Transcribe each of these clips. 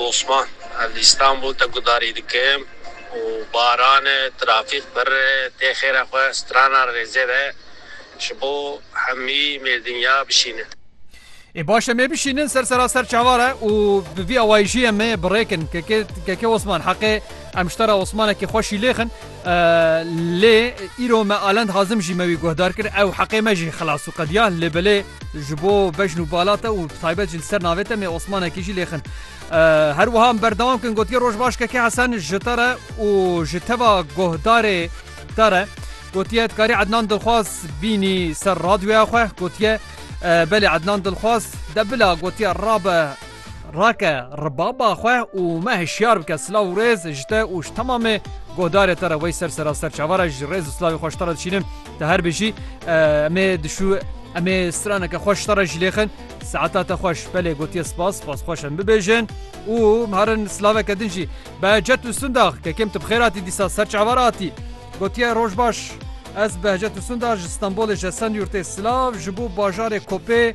Osman, Ez li Îstanbûl te gudarî dikim û baran e, trafîk pirr e, tê xêra xwe strana rêzê de ji bo hemî mêrdinya bişînin. Ê baş e, mêbişînin ser sera ser çavar e û bi vî awayîşî em ê birêkin. Keke, Keke Osman, heqê em ji te re Osmanekî xweş îlêxin. Lê îro me Alend Hazim jî me wî guhdar kir, ew heqê me jî xilas û qediya. Lê belê ji bo bejn û bala te û bi taybet jî li ser navê te mê Osmanekî jî lê xin. Her wiha em berdewam kin gotiye roj baş Keke Hesen ji te re û ji teva guhdarê te re gotiye dikarî Ednan Dilxwaz bînî ser radyoya xwe gotiye belê Ednan Dilxwaz de bila gotiye rabe Rake ribaba xwe û me hişyar bike silav û rêz ji te û ji temamê godarê te re wey ser sera ser çava re ji rêz û silavê xwe ji te re dişînim te her bijî em ê dişû em ê straneke xwe ji te re jî lêxin saeta te xweş belê gotiye spas spas xweş em bibêjin û herin silaveke din jî be cet û sundax kekêm tu bi xêr hatî dîsa ser çava re hatî gotiye roj baş Ez Behcet Usundar ji Stenbolê ji Esenyurtê silav ji bo bajarê Kopê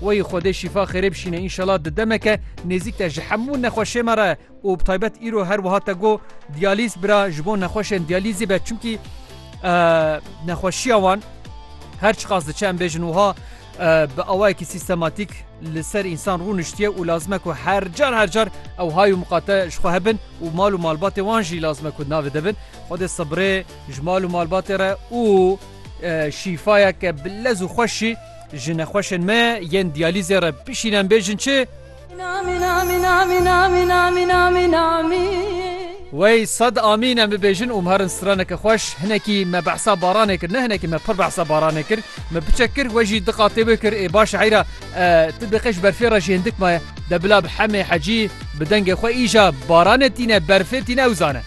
Wayî Xwedê şîfa xêrê bişîne înşela di demeke nêzîk de ji hemû nexweşê me re û bi taybet îro her wiha te got diyalîz bira ji bo nexweşên diyalîzî be çimkî nexweşiya wan her çiqas diçe em bêjin wiha bi awayekî sîstematîk li ser însan rûniştiye û lazime ku her car her car ew hay û miqate ji xwe hebin û mal û malbatê wan jî lazime ku navê de bin Xwedê sibrê ji mal û malbatê re û şîfayeke bi lez û xweş jî Ji nexweşên me yên diyalîzê re bişîn em bêjin çi? Wey sed amîn em bibêjin û miherin straneke xweş. Hinekî me behsa baranê kir. Ne hinekî me pir behsa baranê kir. Me biçek kir we jî di qatê wê kir. Ê baş e heyra tu diqê ji berfê re jî hindik maye. De bila bi Hemê Hecî bi dengê xwe îja baranê tîne berfê tîne ew zane.